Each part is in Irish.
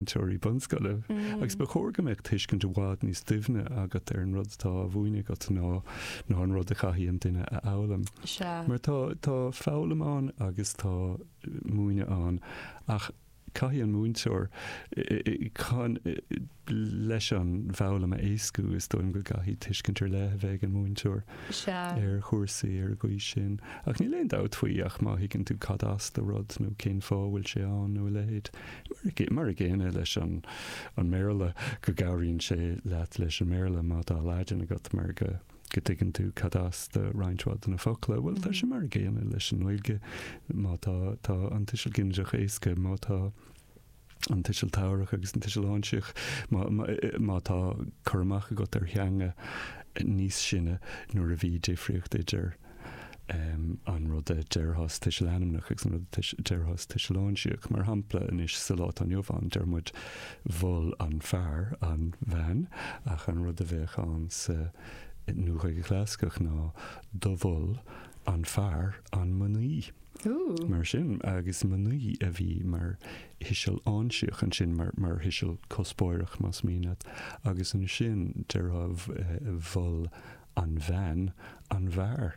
múinteoirí bunscoile agus ba chóir go mbeadh tuiscint i bhfad níos doimhne agat ar an rud atá á mhúineadh agat ná ná an rud a chaithfidh an duine a fhoghlaim. Mar tá tá foghlaim ann agus tá múineadh ann ach caithfidh an múinteoir chun leis an bhfoghlaim a éascú is dóigh liom go gcaithfidh tuiscint ar leith a bheith ag an múinteoir ar chúrsaí ar an gcaoi sin. Ach níl aon dabht faoi ach má thuigeann tú cad as do rud nó cén fáth a bhfuil sé ann nó a leithéid, Mar an gcéanna leis an mBéarla, go gcabhraíonn sé leat leis an mBéarla má tá Laidin agat mar go dtuigeann tú cad as do roinnt mhaith de na focla. Bhuel, tá sé mar an gcéanna leis an nGaeilge má tá, tá an tuiseal ginideach éasca, má tá an tuiseal tabharach agus an tuiseal áinsíoch, má, má tá cur amach agat ar theanga níos sine nuair a bhí difríocht idir. an rud a déarfas tuiseal ainmneach agus an rud a déarfas tuiseal áinsíoch. Mar shampla, anois sa lá atá inniu ann, deir muid mhol an fear an bhean, ach an rud a bheadh ann sa Nua-Ghaeilge Chlasaiceach ná do mhol an fear an mnaoi. Mar sin, agus mnaoi a bhí mar thuiseal áinsíoch ansin, mar thuiseal cuspóireach, más mian leat, agus ansin déarfá mhol An bhean, an bhfear,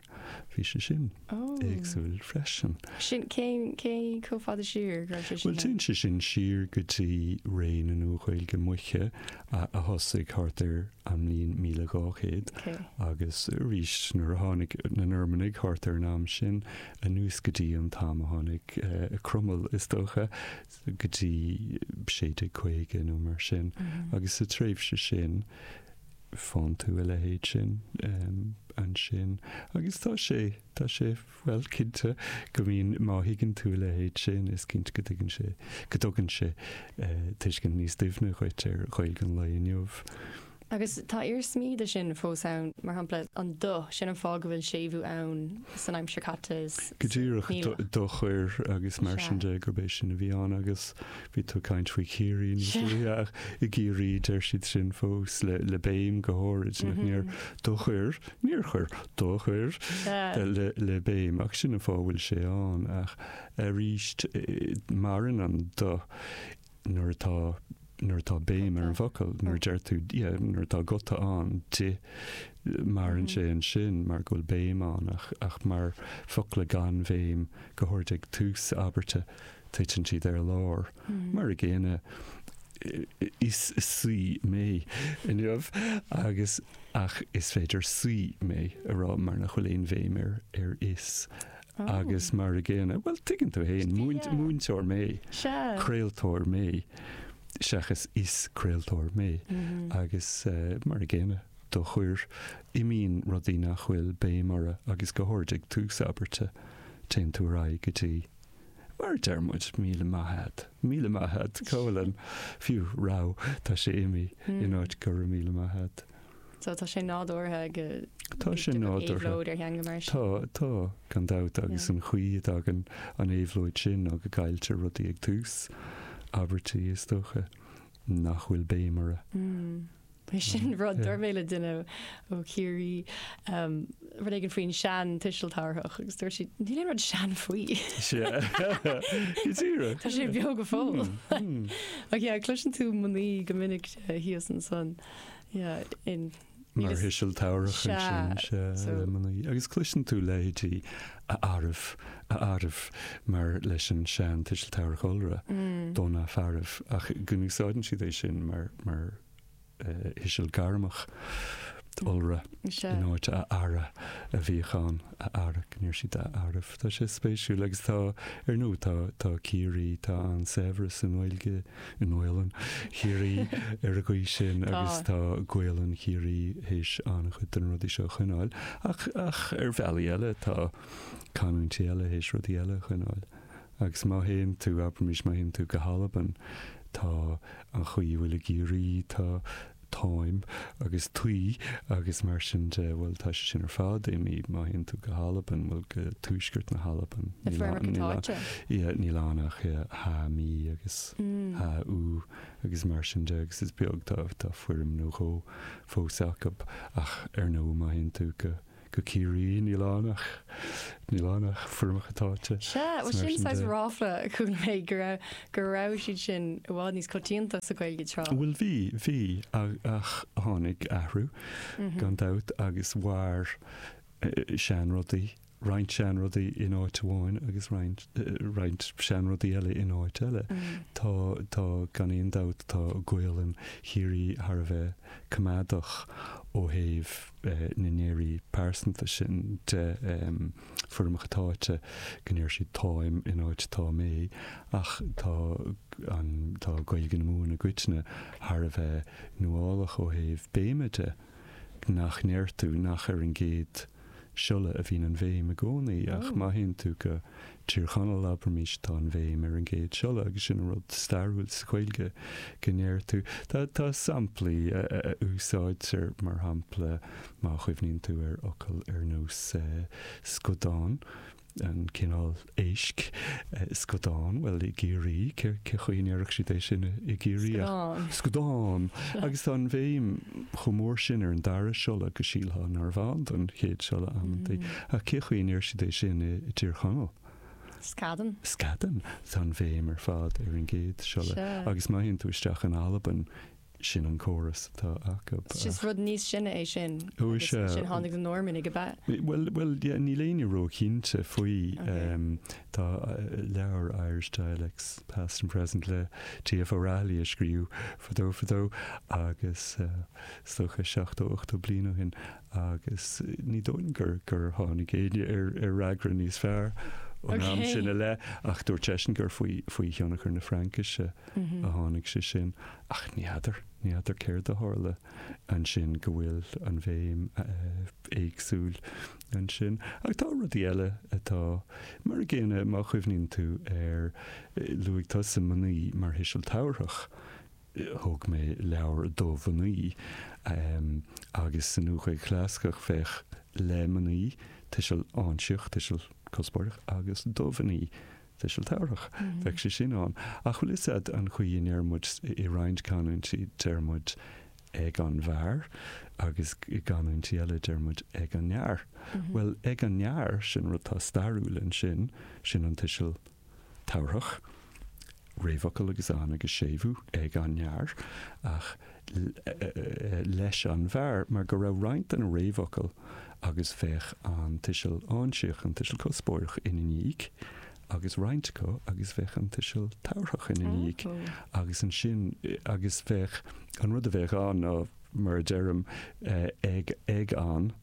bhí sé sin éagsúil freisin. Sin, cén, cé chomh fada siar a raibh sé sin? Bhuel, téann sé sin siar go dtí ré na Nua-Ghaeilge Moiche a thosaigh thart ar an mbliain 1200 agus arís nuair a tháinig na Normannaigh thart ar an am sin, anuas go dtí an t-am a tháinig Cromail, is dócha, go dtí 1650 nó mar sin. Agus sa tréimhse sin, Faigheann tú a leithéid sin ansin agus tá sé, tá sé, bhuel, cinnte go mbíonn, má thuigeann tú a leithéid sin, is cinnte go dtuigeann sé, go dtugann sé tuiscint níos doimhne dhuit ar Ghaeilge an lae inniu. Agus tá iarsmaí de sin fós ann, mar shampla, an do, sin an fáth go bhfuil séimhiú ann san aimsir caite is. Go díreach, do chuir agus mar sin de, gurb é sin a bhí ann agus. Bhí tú ag caint faoi Chiarraí níos luaithe ach i gCiarraí deir siad sin fós le béim go háirid nach níor do chuir, níor chuir, do chuir le béim ach sin an fáth a bhfuil sé ann ach arís maireann an do nuair atá, nuair atá béim ar an bhfocal, nuair a deir tú, yeah, nuair atá guta ann d'ith maireann sé ansin mar go bhfuil béim ann ach mar focla gan bhéim go háirid ag tús abairte. titeann siad ar lár mar a gcéanna is saoi mé inniu agus ach is féidir saoi mé a rá mar nach bhfuil aon bhéim ar ar is agus mar a gcéanna, bhuel tuigeann tú fhéin, múint, múinteoir mé, craoltóir mé seachas is craoltóir mé agus mar a gcéanna do chuir, imíonn rudaí nach bhfuil béim orthu agus go háirid ag tús abairte téann tú ar aghaidh go dtí Mar a deir muid, míle maith a'd. Míle maith ad, Colin. Fiú, raw, tá sé imithe in áit go raibh míle maith a'd. So tá sé nádúrtha go Tá sé nádúrtha. ar theanga mar sin. Tá, tá, gan dabht agus an chaoi a dtagann an éabhlóid sin nó go gcailltear rudaí ag tús abairtí is dócha. nach bhfuil béim orthu. Bhuel, sin rud d'ardaigh mé le duine ó Chiarraí rud éigin faoin sean tuiseal tabharthach agus dúirt siad níl aon rud sean faoi. Go díreach. Tá sé beo go fóill. Ach yeah, cloiseann tú mnaoi go minic thíos ansan. Yeah, in. mar thuiseal tabharthach ansin le mnaoi, agus cloiseann tú leithéidí 'a fhearaibh, a fhearaibh' mar leis an sean-tuiseal tabharthach iolra, dos na fearaibh ach go n-úsáideann siad é sin mar thuiseal gairmeach iolra in áit 'a fheara' a bhíodh ann, 'a fheara', go ndeir siad 'a fhearaibh'. Tá sé spéisiúil agus tá, ar ndóigh, tá Ciarraí, tá an-saibhreas sa nGaeilge. i nGaolainn Chiarraí ar an gcaoi sin agus tá Gaolainn Chiarraí théis an-chuid de na rudaí seo a choinneáil ach ach ar bhealaí eile tá canúintí eile théis rudaí eile a choinneáil. Agus má théann tú, abraimís, má théann tú go hAlbain, tá an chaoi a bhfuil i gCiarraí, tá táim agus taoi agus mar sin de, bhuel, tá sé sin ar fad imithe má théann tú go hAlbain, bhuel, go tuaisceart na hAlban, na foirmeacha táite. Ia, níl ann ach ia, tha mi agus tha thu agus mar sin de agus is beag, tá, tá foirm nó dhó fós acu ach ar ndóigh má théann tú go, go Ciarraí, níl ann ach níl ann ach foirmeacha táite. Sea, bhuel sin, sin saghas de ráfla a chuala mé go raibh go raibh siad sin i bhfad níos coitianta sa Ghaeilge tráth. Bhuel bhí, bhí, ach, ach tháinig athrú gan dabht agus mhair seanrudaí, roinnt seanrudaí in áit amháin agus roinnt, roinnt seanrudaí eile in áit eile. Tá, tá gan aon dabht, tá Gaolainn Chiarraí thar a bheith coimeádach ó thaobh, na ndeirí pearsanta sin, de foirmeacha táite go ndeir siad 'táim' in áit 'tá mé', ach tá an, tá Gaeilge na Mumhan i gcoitinne thar a bheith nuálach ó thaobh béime de, nach ndeir tú nach ar an gcéad siolla a bhíonn an bhéim i gcónaí, ach má théann tú go Tír Chonaill abraimis atá an bhéim ar an gcéad siolla agus sin rud stairiúil sa Ghaeilge go ndéarfá. Tá samplaí a úsáidtear, mar shampla má chuimhníonn tú ar fhocail ar nós scudán, an cineál éisc, scudán, bhuel i gCiarraí cé chaoi a ndéarfadh siad é sin i gCiarraí ach Scudán. scudán. Agus tá an bhéim chomh mór sin ar an dara siolla go sílfeá narbh ann don chéad siolla amantaí. Ach cé chaoi a ndéarfaidís é sin i dTír Chonaill? Scadán. Scadán. Tá an bhéim ar fad ar an gcéad siolla. Sea. Agus má théann tú isteach in Albain, sin an córas atá acu. Ach. Sea, is rud níos sine é sin. Ó sea. Agus ansin tháinig na Normannaigh, ab ea? Bhuel, bhuel, yeah, níl éinne ró-chinnte faoi. Okay. Tá leabhar, Irish Dialects, Past and Present, le T.F. O'Rahilly a scríobhadh fadó fadó agus is dócha seachtó, ochtó bliain ó shin. agus ní dóigh liom gur tháinig éinne ar fhreagra níos fearr ón am sin i leith, ach dúirt seisean gur faoi thionchar na Fraincise a tháinig sé sin. Ach ní fheadar, ní fheadar céard a tharla ansin go bhfuil an bhéim éagsúil ansin. Ach tá rudaí eile atá mar a gcéanna, má chuimhníonn tú ar, luaigh tusa mnaoi mar thuiseal tabharthach, thug mé leabhar do mhnaoi agus sa Nua-Ghaeilge Chlasaiceach bheadh le mnaoi, tuiseal áinsíoch, tuiseal cuspóireach, agus do mhnaoi, tuiseal tabharthach. Bheadh sé sin ann. Ach bhfuil a fhios agat an chaoi a ndeir muid, i roinnt canúintí deir muid 'ag an bhfear' agus i gcanúintí eile deir muid 'ag an fhear'. Bhuel, 'ag an fhear', sin rud atá stairiúil ansin, sin an tuiseal tabharthach, réamhfhocal agus an agus séimhiú ag an fhear, ach leis an bhfear, mar go raibh roinnt de na réamhfhocail agus bheadh an tuiseal áinsíoch, an tuiseal cuspóireach, ina ndiaidh, agus roinnt acu agus bheadh an tuiseal tabharthach ina ndiaidh, agus ansin agus bheadh an rud a bheadh ann ná, mar a deirim, ag an,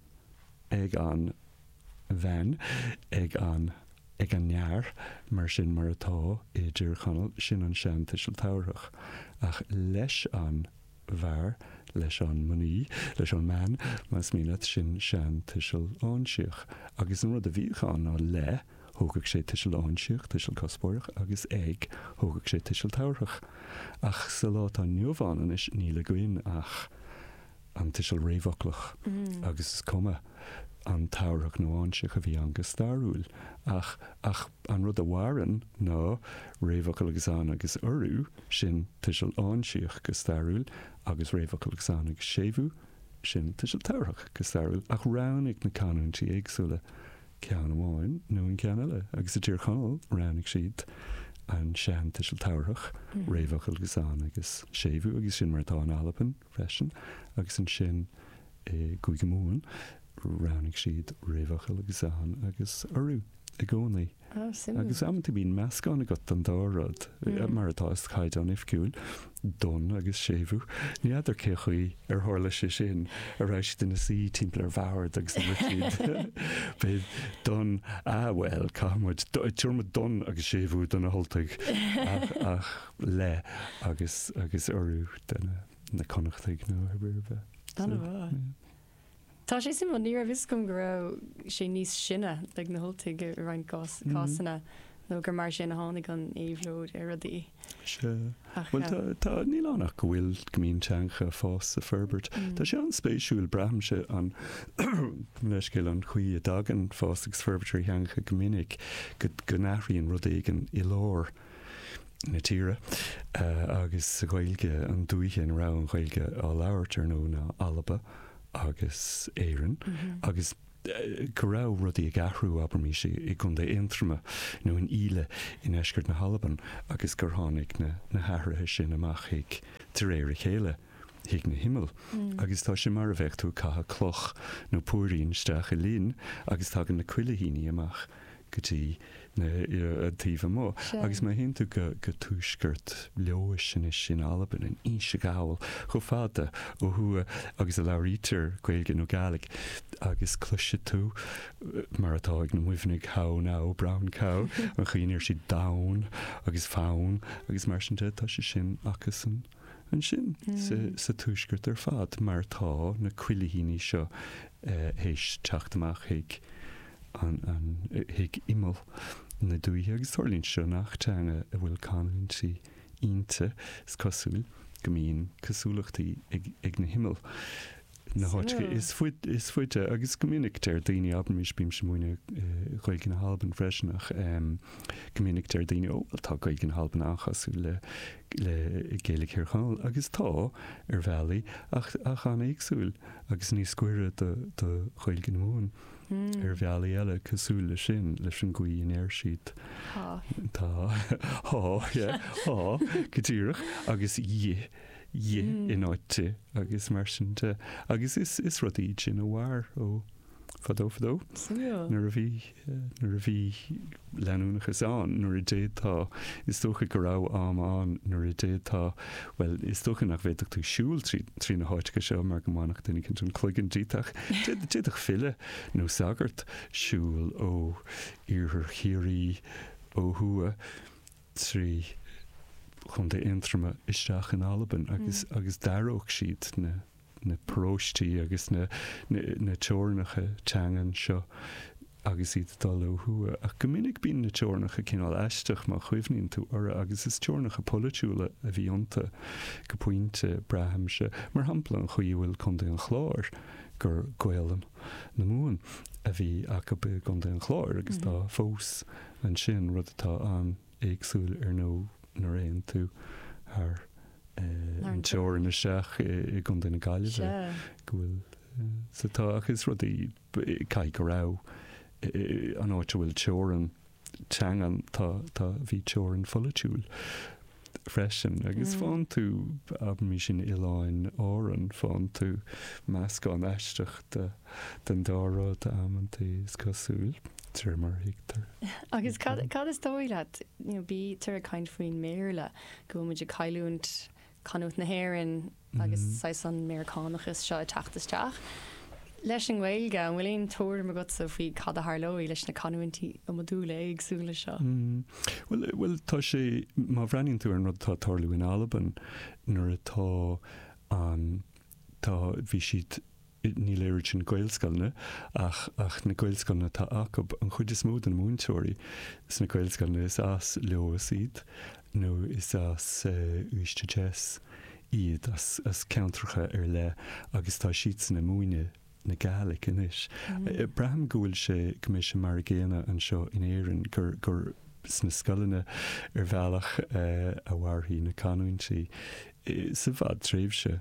ag an, bhean ag an ag an fhear mar sin mar atá i dTír Chonaill, sin an seantuiseal tabharthach, ach leis an bhfear, leis an mnaoi, leis an mbean, más mian leat, sin seantuiseal áinsíoch. Agus an rud a bhíodh ann ná le, thógadh sé tuiseal áinsíoch, tuiseal cuspóireach, agus ag, thógadh sé tuiseal tabharthach. Ach sa lá atá inniu ann anois níl againn ach. an tuiseal réamhfhoclach, agus is cuma an tabharthach nó áinsíoch a bhí ann go stairiúil, ach ach an rud a mhaireann ná réamhfhocal agus an agus urú, sin tuiseal áinsíoch go stairiúil, agus réamhfhocal agus an agus séimhiú, sin tuiseal tabharthach go stairiúil, ach roghnaigh na canúintí éagsúla ceann amháin nó an ceann eile, agus i dTír Chonaill roghnaigh siad an seantuiseal tabharthach, réamhfhocal agus an agus séimhiú, agus sin mar atá in Albain. freisin, agus ansin i gCúige Mumhan roghnaigh siad réamhfhocal agus an agus urú i gcónaí. Ah, suimiúil. Agus amanta bíonn meascán agat den dá rud, mar atá sa chaighdeán oifigiúil, don agus séimhiú. Ní fheadar cé chaoi ar tharla sé sin, an raibh siad ina suí timpeall ar bhord agus ag rá beidh don, ah bhuel, caithfidh muid, tabharfaidh muid don agus séimhiú do na hUltaigh, ach, ach. le agus urú do na na Connachtaigh nó ar ar bith. An so, bhfuil? Yeah. Tá sé simple, ní raibh fhios agam go raibh sé níos sine ag na hUltaigh i roinnt cás, mm. cásanna nó gur mar sin a tháinig an éabhlóid ar rudaí. Se. Bhfuil tá, um, tá níl a fhios againn go bhfuil go mbíonn teangacha ag fás is ag forbairt. Mm. Tá sé an-spéisiúil braithimse gabh mo leithscéal an chaoi a dtagann fás agus forbairt ar theangacha go minic go, go n-athraíonn rud éigean i lár. na tíre agus sa Ghaeilge an dúiche ina raibh an Ghaeilge á labhairt ar ndóigh ná Alba agus Éirinn agus go raibh rudaí ag athrú abraimis i gContae Aontroma nó in Íle i ndeisceart na hAlban agus gur tháinig na hathruithe sin amach chuig de réir a chéile. chuig na himill, agus tá sé mar a bheadh tú ag caitheamh cloch nó púirín isteach i linn agus tagann na cuilithíní amach go dtí na, an taobh amuigh. Agus má théann tú go tuaisceart Leodhais anois in Albain, in Inse Ghall, chomh fada ó thuaidh agus a labhraítear Gaeilge nó Gaidhlig agus cloisfidh tú, mar atá ag na Muimhnigh, how now, brown cow, an chaoi a ndeir siad donn agus fonn agus mar sin de, tá sé sin acusan. ansin sa tuaisceart ar fad mar tá na cuilithíní seo théis teacht amach chuig imeall na dúiche agus tarlaíonn sé seo in achan teanga a bhfuil canúintí inti. Is cosúil go mbíonn cosúlachtaí ag na himill. na háiteanna is faide agus go minic deir daoine, abraimis bímse ag múineadh Ghaeilge na hAlban freisin ach go minic deir daoine ó bhuel tá Gaeilge na hAlban an-chosúil le le Gaeilge Thír Chonaill agus tá ar bhealaí ach ach an-éagsúil agus níos gaire do do Ghaeilge na Mumhan ar bhealaí eile cosúil le sin leis an gcaoi a ndeir siad tá tá yeah tá go díreach agus dhith dhi in áit di agus mar sin de. Agus is is rudaí iad sin a mhair ó fadó fadó nuair a bhí nuair a bhí leanúnachas ann, nuair a d'fhéadfá, is dócha go raibh am ann nuair a d'fhéadfá, bhuel, is dócha nach bhféadfadh tú siúl trí trí na háiteacha seo mar go mbainfeadh duine éicint an cloigeann díot ach d'fhéad d'fhéadfadh file nó sagart siúl ó iarthar Chiarraí ó thuaidh trí Chontae Aontroma isteach in Albain agus agus d'aireodh siad na na paróistí agus na na teorainneacha teangan seo agus iad ag dul ó thuaidh. Ach go minic bíonn na teorainneacha cineál aisteach má chuimhníonn tú orthu agus is teorainneacha polaitiúla a bhí iontu go pointe, braithimse. Mar shampla, an chaoi a bhfuil Contae an Chláir, gur Gaelainn na Mumhan a bhí acu i gContae an Chláir agus tá fós, ansin, rud atá an-éagsúil ar nó nuair a théann tú thar an teorainn isteach i gContae na Gaillimhe, go bhfuil sa tá ach is rudaí caithfidh go raibh an áit a bhfuil teorainn teangan tá bhí teorainn pholaitiúil. freisin, agus fán tú, abraimís sna hOileáin Árann, fán tú meascán aisteach den dá rud amantaí, is cosúil, de réir mar a thuigtear. Agus cad is dóigh leat, bítear ag caint faoin mBéarla, go bhfuil muid ag cailliúint canúint na hÉireann, agus saghas an Meiriceánachas seo ag teacht isteach. Leis an nGaeilge, an bhfuil aon tuairim agatsa faoi cad a tharlóidh leis na canúintí iomadúla éagsúla seo? Bhuel, bhuel, tá sé, má bhreathnaíonn tú ar an rud atá ag tarlú in Albain, mar atá an, tá, bhí siad, Níl fhios agam an Gaelscoileanna ach ach na Gaelscoileanna atá acu. An chuid is mó de na múinteoirí sna Gaelscoileanna is as Leodhas iad nó is as Uibhist a Deas iad, as as ceantracha ar leith agus tá siadsan ag múineadh na Gaelic anois. Braithim go bhfuil sé go mbeidh sé mar a chéanna anseo in Éirinn gur gur sna scoileanna ar bhealach a mhairfidh na canúintí sa bhfadtréimhse.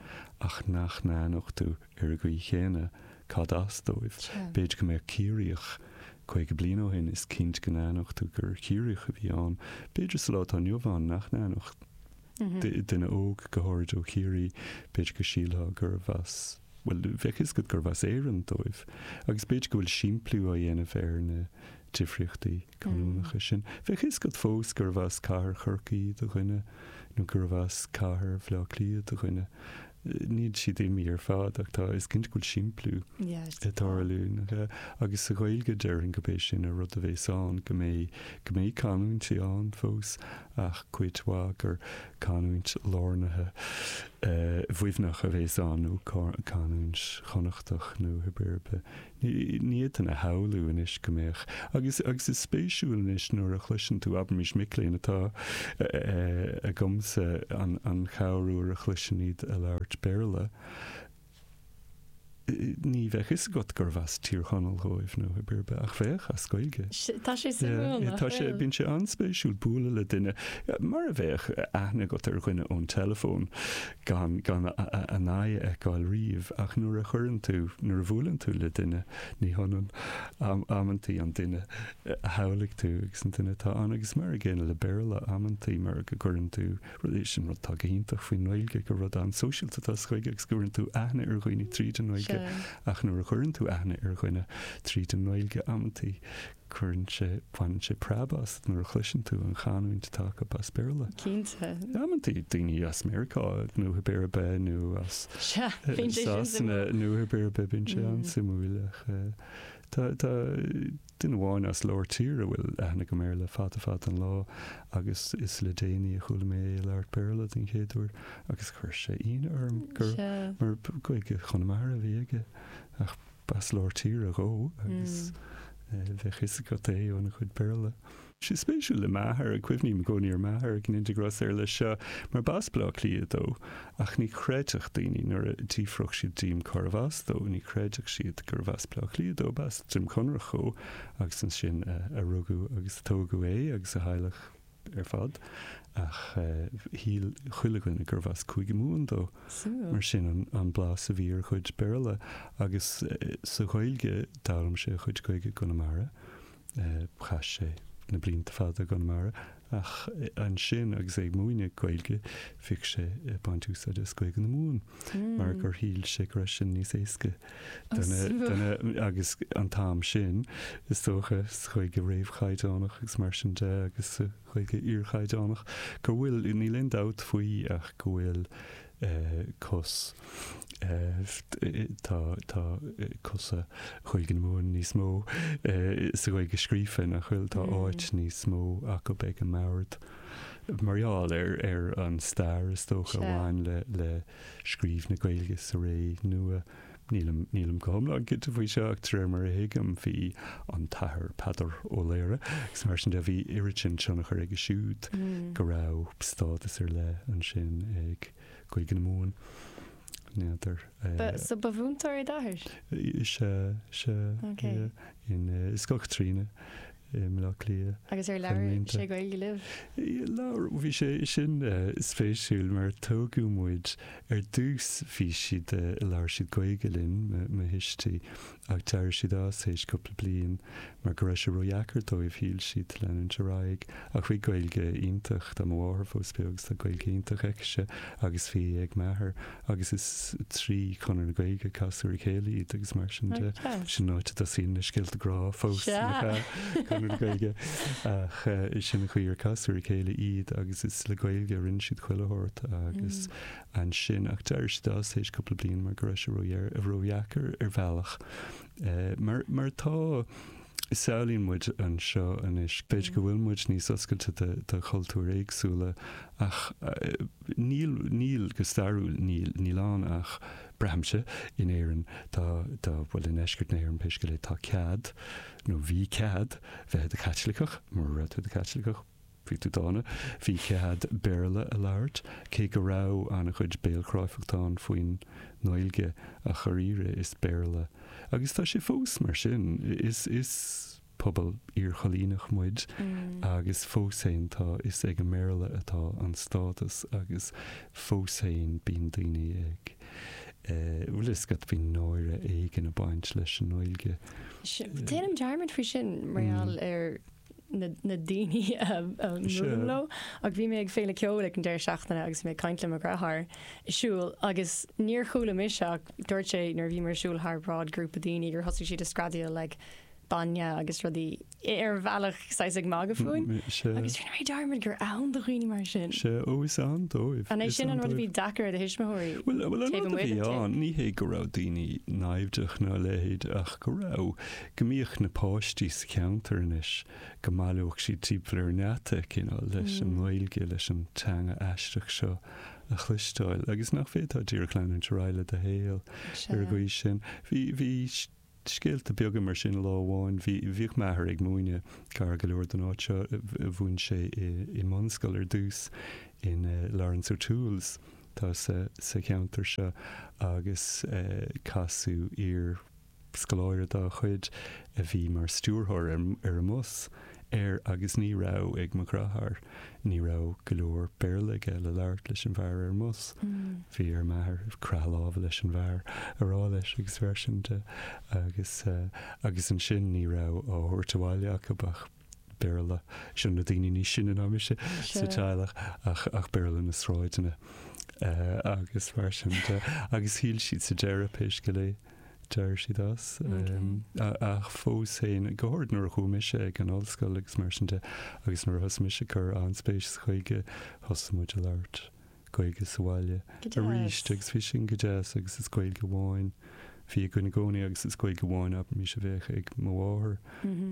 ach nach n-aithneochtú ar an gcaoi chéanna cad as dóibh. B'fhéidir go mbeadh Ciarraíoch caoga bliain ó shin, is cinnte go n-aithneochtú gur Chiarraíoch a bhí ann, b'fhéidir sa lá atá inniu ann nach n-aithneodh duine óg, go háirid ó Chiarraí, b'fhéidir go sílfeá gurbh as, bhuel, bheadh fhios agat gurbh as Éirinn dóibh. Agus b'fhéidir go bhfuil simpliú á dhéanamh ar na. difríochtaí canúnacha sin. Bheadh fhios agat fós gurbh as cathair Chorcaí do dhuine nó gurbh as cathair Bhleá Cliath do dhuine. Níl siad imithe ar fad ach tá, is cinnte go bhfuil simpliú ag tarlú. Agus sa Ghaeilge déarfainn gurb é sin an rud a bhéas ann, go mbeidh, go mbeidh canúintí ann fós ach cuid mhaith gur canúint lárnaithe Mhuimhneach a bhéas ann nó canúint Chonnachtach nó cibé ar bith Ní fhéadfainn a shamhlú anois go mbeadh. Agus is spéisiúil anois nuair a chloiseann tú, abraimis, mic léinn atá agamsa an chorruair a chloisinn iad ag labhairt Béarla, ní bheadh fhios agat gurbh as Tír Chonaill dhóibh nó cibé ar bith, ach bheadh, as Gaeilge. Tá sé suimiúil nach bhfuil? Bíonn sé an-spéisiúil bualadh le duine, mar a bheadh aithne agat ar dhuine ón teileafón, gan gan a n-aghaidh a fheiceáil riamh, ach nuair a chuireann tú, nuair a bhuaileann tú le duine, ní hionann amantaí an duine a shamhlaigh tú agus an duine atá ann. Agus mar an gcéanna le Béarla, amantaí mar go gcuireann tú, rud é sin rud atá go hiontach faoin nGaeilge, gur rud an-sóisialta atá sa Ghaeilge agus go gcuireann tú aithne ar dhaoine tríd an nGaeilge, ach nuair a chuireann tú aithne ar dhuine tríd an nGaeilge, amantaí, Cuireann sé, baineann sé preab asat nuair a chloiseann tú an chanúint atá acu as Béarla. Cinnte. Amantaí, daoine as Meiriceá nó cibé ar bith nó as. Sea, bíonn sé sin suimiúil. Sasana nó cibé ar bith, bíonn sé an-suimiúil ach tá, tá duine amháin as lár tíre a bhfuil aithne agam air le fada fada an lá agus is le déanaí a chuala mé é ag labhairt Béarla den chéad uair agus chuir sé ionadh orm gur mar Gaeilge Chonamara a bhí aige ach B'as lár tíre dhó agus bheadh 'fhios agat é óna chuid Béarla. Sé spéisiúil le m'athair, cuimhním i gcónaí ar m'athair go ndéana Dia grásta air, leis seo, mar b'as Baile Átha Cliath dó, ach ní chreidfeadh daoine nuair a d'fhiafródh siad díom cárbh as dó, ní chreidfeadh siad gurbh as Baile Átha Cliath dó, b'as Droim Conrach dhó agus ansin a rugadh agus a tógadh é agus a theaghlach. ar fad, ach shíl chuile dhuine gurbh as Cúige Mumhan dó. Mar sin an blas a bhí ar a chuid Béarla. Agus sa Ghaeilge, d'fhoghlaim sé a chuid Gaeilge i gConamara. Chaith sé na blianta fada i gConamara, ach ansin agus é ag múineadh Gaeilge, bhíodh sé ag baint úsáide as Gaeilge na Mumhan, mar gur shíl sé go raibh sin níos éasca. Agus an t-am sin, is dócha, sa Ghaeilge réamhchaighdeánach agus mar sin de, agus sa Ghaeilge iarchaighdeánach, go bhfuil, níl aon dabht faoi ach go bhfuil cos, tá, tá cosa Ghaeilge na Mumhan níos mó sa Ghaeilge scríofa, nach bhfuil, tá áit níos mó acu ag an mbord mar gheall ar, ar an stair, is dócha, a bhain le, le. scríobh na Gaeilge sa ré nua. Nílim go hiomlán cinnte faoi seo ach de réir mar a thuigim bhí an tAthair Peadar Ó Laoghaire agus mar sin de, bhí oiread sin tionchar aige siúd go raibh stádas ar leith ansin ag Gaeilge na Mumhan. N'fheadar. So ba mhúinteoir é d'athair? Sea, sea. Ok. Yeah. In uh, Scoil Chaitríona i mBleá Cliath. Agus ar labhair sé Gaeilge libh? Labhair, bhí sé, sin spéisiúil mar tógadh muid, ar dtús bhí siad, labhair siad Gaeilge linn, mo thuistí, ach d'éirigh siad as théis cúpla bliain mar go raibh sé ródheacair dóibh, shíl siad, leanúint ar aghaidh, ach bhí Gaeilge iontach, tá mo mháthair fós beo agus tá Gaeilge iontach aici-se agus bhí ag m'athair agus is trí Chonradh na Gaeilge, casadh ar a chéile iad agus mar sin de, sin áit a dtosaíonn na scéalta grá fós le Conradh na Gaeilge, ach sin an chaoi ar casadh ar a chéile iad agus is le Gaeilge a rinne siad chuile shórt agus ansin, ach d'éirigh siad as tar éis cúpla bliain mar go raibh sé ródheacair ar bhealach mar mar tá. samhlaíonn muid anseo anois. B'fhéidir go bhfuil muid níos oscailte do chultúir éagsúla ach níl, níl, go stairiúil níl. Níl ann ach, braithimse, in Éirinn, tá, tá, bhuel i ndeisceart na hÉireann pé scéal é, tá cead, nó bhí cead, bheith i do Chaitliceach, mura raibh tú i do Chaitliceach, Bhí tú dána. Bhí cead Béarla a labhairt, cé go raibh an-chuid béalchráifeachta ann faoin nGaeilge, ach dháiríre is Béarla, agus tá sé fós mar sin, is is pobal iarchoilíneach muid agus fós féin tá, is ag an mBéarla atá an stádas agus fós féin bíonn daoine ag eh, bhfuil a fhios agat, bíonn náire éigin ag baint leis an nGaeilge. Déanaim dearmad faoi sin mar gheall ar. na daoine a mhúlaim leo, ach bhí mé ag féile ceoil ag an deireadh seachtaine agus bhí mé ag caint le mo dheartháir ag siúl agus níor chuala mise ach dúirt sé nuair a bhíomar ag siúl thar bráid grúpa daoine gur thosaigh siad ag screadaíl like bainne agus rudaí ar bhealach saghas ag magadh fúinn agus rinne mé dearmad gur ann do dhaoine mar sin. Sea, ó is ann dóibh. An é sin an rud a bhí deacair ar do thuismitheoirí? Bhuel, an rud a bhí ann, ní hé go raibh daoine naimhdeach ná a leithéid ach go raibh go mbíodh na páistí sa cheantar anois, go mbaileodh siad timpeall ar an ngeata, cineál, leis an nGaeilge, leis an teanga aisteach seo a chloisteáil, agus nach bhféadfá díreach leanúint ar aghaidh le do shaol ar an gcaoi sin. Bhí, bhí scéalta beaga mar sin, lá amháin, bhí, bhíodh m'athair ag múineadh gar go leor don áit seo, mhúin sé i, i mbunscoil ar dtús, in eh, Laurence O'Toole's, tá sa, sa cheantar seo, agus eh, casadh iar, Scoláire dá chuid a bhí mar stiúrthóir ar an mbus, ar, agus ní raibh ag mo dhreatháir, ní raibh go leor Béarla aige le labhairt leis an bhfear ar an mbus. Bhí ar m'athair croitheadh láimhe leis an bhfear a rá leis agus mar sin de agus, agus ansin ní raibh á thabhairt abhaile acu ach. Béarla. Seo na daoine níos sine ná mise sa teaghlach ach ach Béarla na sráideanna agus mar sin de. Agus shíl siad sa deireadh pé scéal é d'éirigh siad as. Ach fós féin, go háirid nuair a chuaigh mise ag an ollscoil agus mar sin de agus nuair a thosaigh mise ag cur an-spéis i nGaeilge, thosaigh muid ag labhairt Gaeilge sa bhaile arís agus bhí sin go deas agus is Gaeilge amháin a bhí againn i gcónaí agus is Gaeilge amháin anois a bheadh ag mo mháthair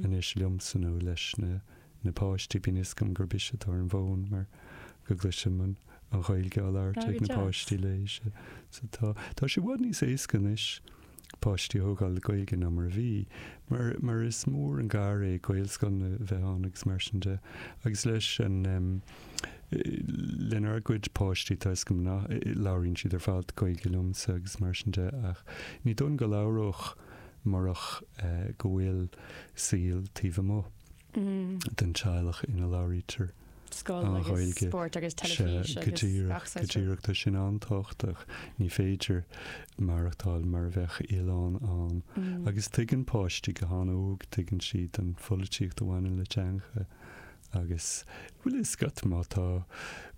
anois liomsa nó leis na na páistí, bíonn a fhios agam gurb ise atá ar an bhfón mar go gcloisim an Ghaeilge á labhairt ag na páistí léi, sea, so tá, tá sé i bhfad níos éasca anois. páistí a thógáil le Gaeilge ná mar a bhí, mar mar is mór an gar é Gaelscoileanna bheith ann agus mar sin de. Agus leis an em. lenár gcuid páistí tá 'fhios agam labhraíonn siad ar fad Gaeilge liomsa agus mar sin de ach ní dóigh liom go labhródh murach eh go bhfuil saol taobh amuigh. den teaghlach ina labhraítear an Ghaeilge. Sea, go díreach, go díreach. Tá sin an-tábhachtach. Ní féidir maireachtáil mar a bheadh oileán ann. Agus tuigeann páistí go han-óg, tuigeann siad an pholaitíocht a bhaineann le teangacha. Agus, bhuel, is cuma má tá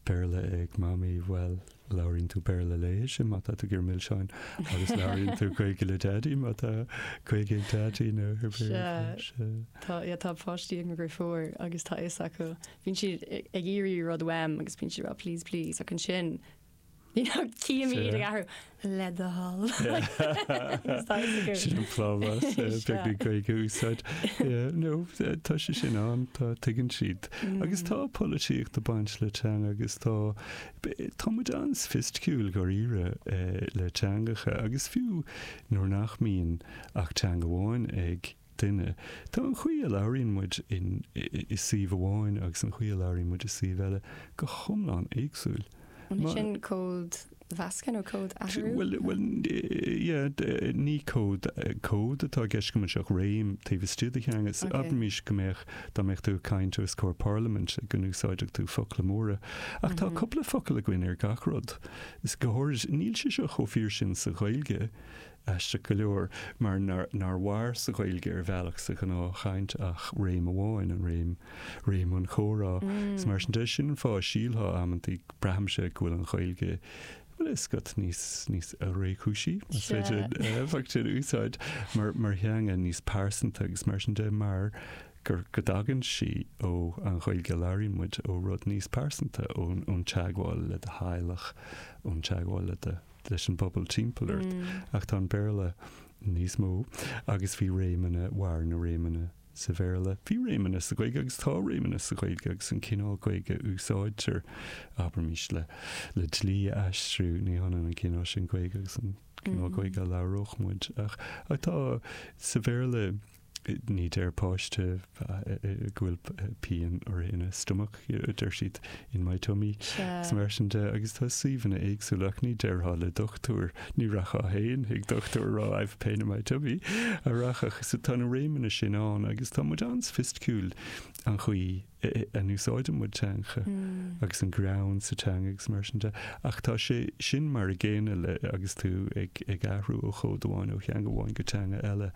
Béarla ag Mamaí, bhuel, Labhraíonn tú Béarla léithi má tá tú ag iarraidh milseáin agus labhraíonn tú Gaeilge le Daidí má tá Gaeilge ag Daidí nó ag Béarla. Sea, tá páistí agam gur fuar agus tá a fhios acu. Bíonn siad ag iarraidh rud uaim agus bíonn siad ag rá please, please ach ansin you know cífidh mé iad ag athrú le do thoil. Sin an plámás, beagnach Gaeilge a úsáid. No, tá sé sin ann, tá, tuigeann siad. Agus tá polaitíocht ag baint le teanga agus tá, Tá muid an-soifisticiúil, dháiríre, le teangacha, agus fiú nuair nach mbíonn ach teanga amháin ag duine, tá an chaoi a labhraíonn muid i suíomh amháin agus an chaoi a labhraíonn muid i suíomh eile go hiomlán éagsúil. An é sin códmheascadh nó códathrú? Bhuel, ní cód atá i gceist agam anseo ach réim taobh istigh de theanga. Abraimis go mbeadh Dá mbeadh tú ag caint os comhair parlaiminte go n-úsáidfeadh tú focla móra. Ach tá cúpla focal againn ar gach rud. Is go háirid níl sé seo chomh fíor sin sa Ghaeilge, aisteach go leor, mar nár mhair sa Ghaeilge ar bhealach sa ghnáthchaint ach réim amháin, an réim, réim an chomhrá. Is mar sin de, sin an fáth a síltear amantaí, braithimse, go bhfuil an Ghaeilge Bhuel, is scáth níos, níos réchúisí, más féidir an focal sin a úsáid, mar, mar theanga níos pearsanta agus mar sin de, mar gur, go dtagann sí ó an Ghaeilge a labhraíonn muid, ó rud níos pearsanta, ón, ón teagmháil le do theaghlach, ón teagmháil le do, leis an bpobal timpeall ort. Ach tá an Béarla níos mó agus bhí réimeanna, mhair na réimeanna sa Bhéarla. Bhí réimeanna sa Ghaeilge agus tá réimeanna sa Ghaeilge agus an cineál Gaeilge a úsáidtear, abraimis, le le dlí a aistriú, ní hionann an cineál sin Gaeilge agus an cineál Gaeilge a labhródh muid. Ach tá sa Bhéarla ní deir páiste go bhfuil pian uirthi ina stomach. deir siad, in my tummy, is mar sin de, agus tá suíomhanna éagsúla ach ní déarfá le dochtúir, ní rachfá féin chuig dochtúir ag rá I've a pain in my tummy, an rachfá, so tá na réimeanna sin ann agus tá muid an-soifisticiúil an chaoi a n-úsáideann muid teanga agus an greann sa teanga agus mar sin de, ach tá sé sin mar a gcéanna le, agus tú ag ag athrú ó chód amháin, ó theanga amháin go teanga eile,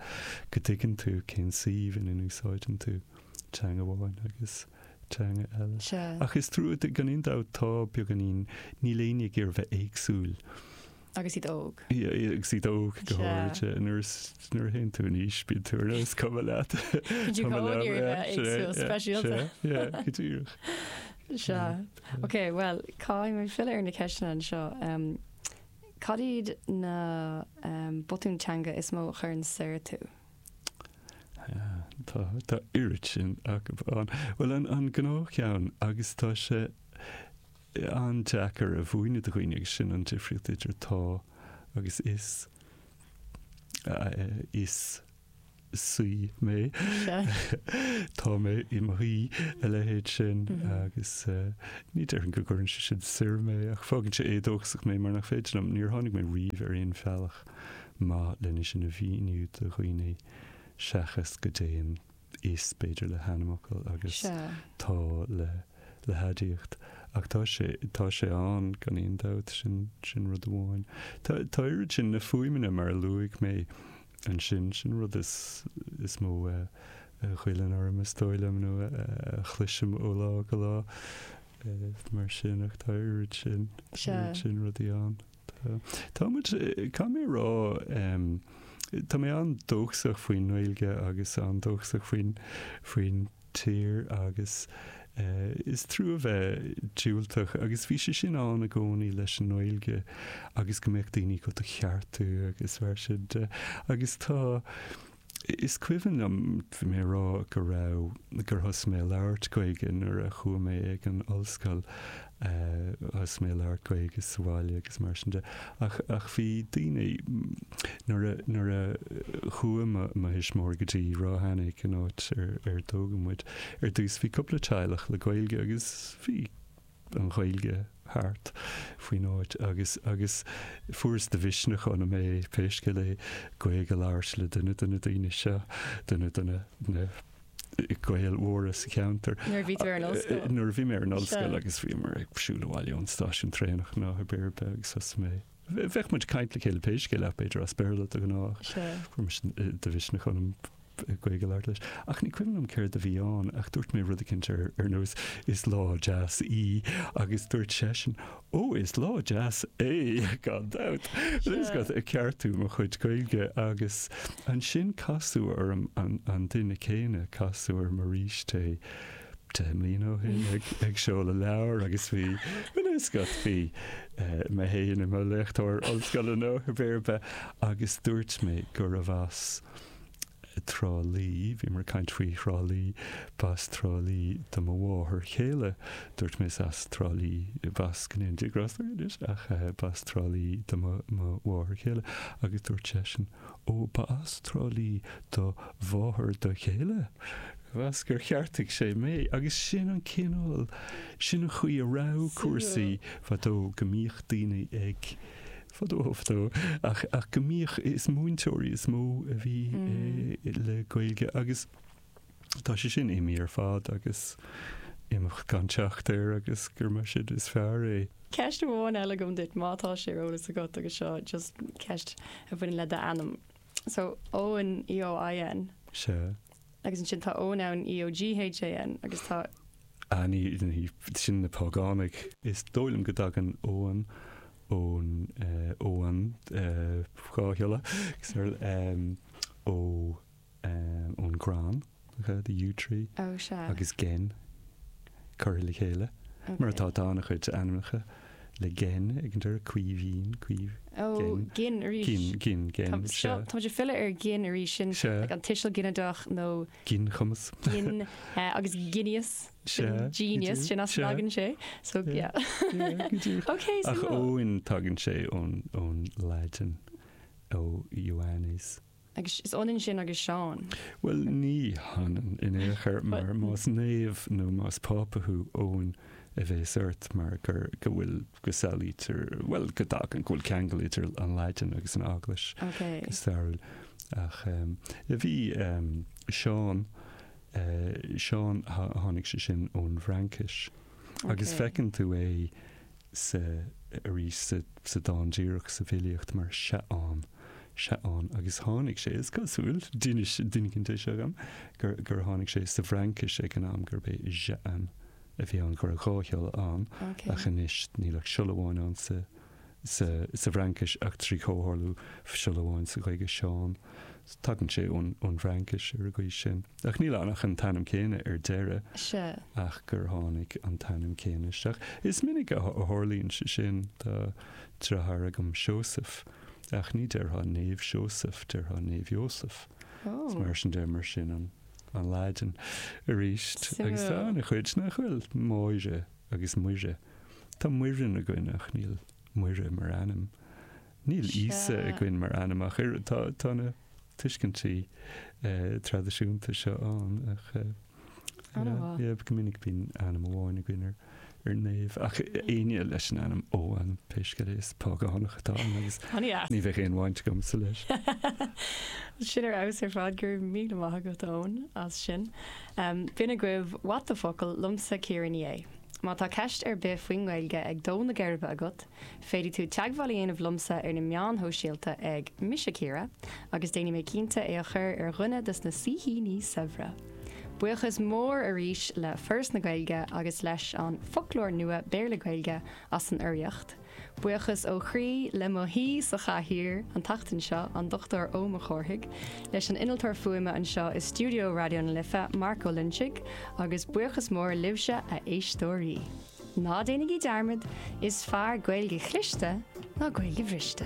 go dtuigeann tú cén suíomh ina n-úsáideann tú teanga amháin agus. teanga eile. Ach is trua duit gan aon dabht tá beagáinín, níl éinne ag iarraidh a bheith éagsúil. Agus iad óg. Agus iad óg go háirithe. Nuair is, nuair a théann tú in aois bíonn tú ar nós, is cuma leat. Bíonn tú ag iarraidh a bheith éagsúil, speisialta. Sea, go díreach. Sea. Ok, bhuel, caithfidh mé filleadh ar na ceisteanna anseo. Cad iad na botúin teanga is mó a chuireann soir tú? Tá, tá oiread sin acu ann. Bhuel, an, an gnáthcheann, agus tá sé an-deacair a mhúineadh do dhaoine, agus sin an difríocht idir tá agus is, is saoi mé, tá mé i mo shuí, a leithéid sin, agus ní déarfainn go gcuireann sé sin soir mé, ach fágann sé éadóchasach mé mar nach féidir liom, níor tháinig mé riamh ar aon bhealach maith lena sin a mhíniú do dhaoine seachas go dtéann is b'fhéidir le hainmfhocail agus Sea. tá le le haidiacht. Ach tá sé tá sé ann gan aon dabht, sin sin rud amháin. Tá tá oiread sin na fuaimeanna mar a luaigh mé ansin, sin an rud is is mó a a ghoilleann orm is dóigh liom nó a a chloisim ó lá go lá, eh, mar sin ach tá oiread sin Sea. oiread sin rudaí ann. Tá. Tá muid, tá mé a rá, tá mé an-dóchasach faoin nGaeilge agus an-dóchasach faoin, faoin tír agus is trua a bheith diúltach agus bhí sé sin ann i gcónaí leis an nGaeilge agus go mbeadh daoine ag do cheartú agus mar sin de agus tá, Is cuimhin liom mé a rá go raibh, gur thosaigh mé a labhairt Gaeilge nuair a chuaigh mé ag an ollscoil, thosaigh mé a labhairt Gaeilge sa bhaile agus mar sin de. Ach, ach bhí daoine, nuair a, nuair a chuaigh mo, mo thuismitheoirí go dtí Ráth Eanaigh, an áit ar, ar tógadh muid, ar dtús bhí cúpla teaghlach le Gaeilge agus bhí, an Ghaeilge thart faoin áit agus agus fuaireas de mhisneach ionam pé scéal é Gaeilg a labhairt le duine de na daoine seo, duine de na na Gaeil mhóra sa cheantar. Nuair a bhí tú ar an ollscoil? Nuair a bhí mé ar an ollscoil agus bhíomar ag siúl abhaile ón stáisiún traenach nó áit ar bith agus thosaigh mé. Bheadh muid ag caint le chéile pé scéal é b'fhéidir as Béarla de ghnáth. Fuair mise de mhisneach ionam Gaeilge a labhairt leis. Ach ní cuimhin liom céard a bhí ann ach dúirt mé rud eicínt ar ar nós 'Is lá deas í' agus dúirt seisean 'Ó, is lá deas é, gan dabht'. ag ceartú mo chuid Gaeilge agus ansin casadh orm an an duine céanna, casadh orm arís é. Deich mbliana ó shin ag seoladh leabhar agus bhí an fhuascailt, bhí mé féin i mo léachtóir ollscoile nó háit ar bith agus dúirt mé go raibh as Trá Lí, bhíomar ag caint faoi Thrá Lí, b'as Trá Lí do mo mháthair chéile. Dúirt mé is as Trá Lí, b'as go ndéana Dia grásta uirthi anois ach b'as Trá Lí do mo mháthair chéile agus dúirt seisean, Ó, ba as Trá Lí do mháthair do chéile? B'in as gur cheartaigh sé mé, agus sin an cineál, sin an chaoi a raibh cúrsaí fadó, go mbíodh daoine ag, fadó, fadó, ach, ach go mbíodh, is múinteoirí is mó a bhí le Gaeilge agus, Tá sé sin imithe ar fad agus imeacht gan teacht air agus gur mar sin is fearr é. Ceist amháin eile agam duit má tá sé ar eolas agat agus seo just ceist a bhaineann le d'ainm. So Eoin EOIN. Sea. Agus ansin tá Eoin ann EOGHAN agus tá. Annie sin na págánaigh. Is dóigh liom go dtagann Eoin ón Eoin dhá shiolla, ó. ón gcrann, the yew tree, agus gen. curtha le chéile, mar atá, tá an-chuid ainmneacha le gen ag an deireadh, Caoimhín, Caoimh, gen, gin, gin, gen, se. Táimid ag filleadh ar gin arís sin, like an tuiseal ginideach nó. ginchumas. gin, agus genius, genius, sin as a dtagann sé, so yeah. ok, so. Ach Eoin, tagann sé ón Laidin, Ioannes. Agus is ionann sin agus Seán. Bhuel, ní hionann in aon chor, mar más naomh nó más Pápa thú, Eoin a bheas ort mar gur, go bhfuil, go samhlaítear, bhuel, go dtagann, go bhfuil ceangal idir an Laidin agus an Eaglais go stairiúil. Ach bhí Seán, Seán, tháinig sé sin ón bhFraincis. Agus feiceann tú é. sa arís sa dán díreach sa bhfilíocht mar Seán, Seán agus tháinig sé, is cosúil, d'inis duine eicínt dom, gur gur tháinig sé sa bhFraincis ag an am gurb é Jean a bhí ann go raibh dhá shiolla ann ach anois níl ach siolla amháin ann sa sa sa bhFraincis ach trí chomhtharlú siolla amháin sa Ghaeilge Seán tagann sé ón ón bhFraincis ar an gcaoi sin. Ach níl ann ach an t-ainm céanna ar deireadh. Sea. Ach gur tháinig an t-ainm céanna isteach. Is minic a tharlaíonn sé sin. Tá deartháir agam Seosamh, ach ní déarfá Naomh Seosamh, déarfá Naomh Iósaf. Is mar sin deir mar sin an Laidin. Arís, agus tá an-chuid, nach bhfuil, Máire agus Muire. Tá Muireann againn ach níl Muire mar ainm. Níl Íosa againn mar ainm ach oiread. Tá na tuiscintí traidisiúnta seo ann ach go minic bíonn ainm amháin againn ar naomh ach éinne leis an ainm Eoghan, pé scéal é, is págánach atá ann agus ní bheadh aon bhaint agamsa leis. Sin ar fheabhas ar fad, go raibh míle maith agat Eoin as sin. B'in agaibh What the Focal liomsa Ciara Ní É. Má tá ceist ar bith faoin nGaeilge ag dó na geirbe agat, Féadfaidh tú teagmháil a dhéanamh liomsa ar na meáin shóisialta ag, Mise Ciara, agus déanfaidh mé cinnte é a chur ar dhuine dos na saoithíní saibhre! Buíochas mór arís le Foras na Gaeilge agus leis an Foclóir Nua Béarla-Gaeilge as an urraíocht. Buíochas ó chroí le mo shaoi sochaithe an tseachtain seo, an Dr Eoin Mac Cárthaigh, leis an Innealtóir Fuaime anseo i stiúideo Raidió na Life, Mark Ó Loinsigh, agus buíochas mór libhse, a éisteoirí! Ná déanaigí dearmad, is fearr Gaeilge chliste ná Gaeilge bhriste.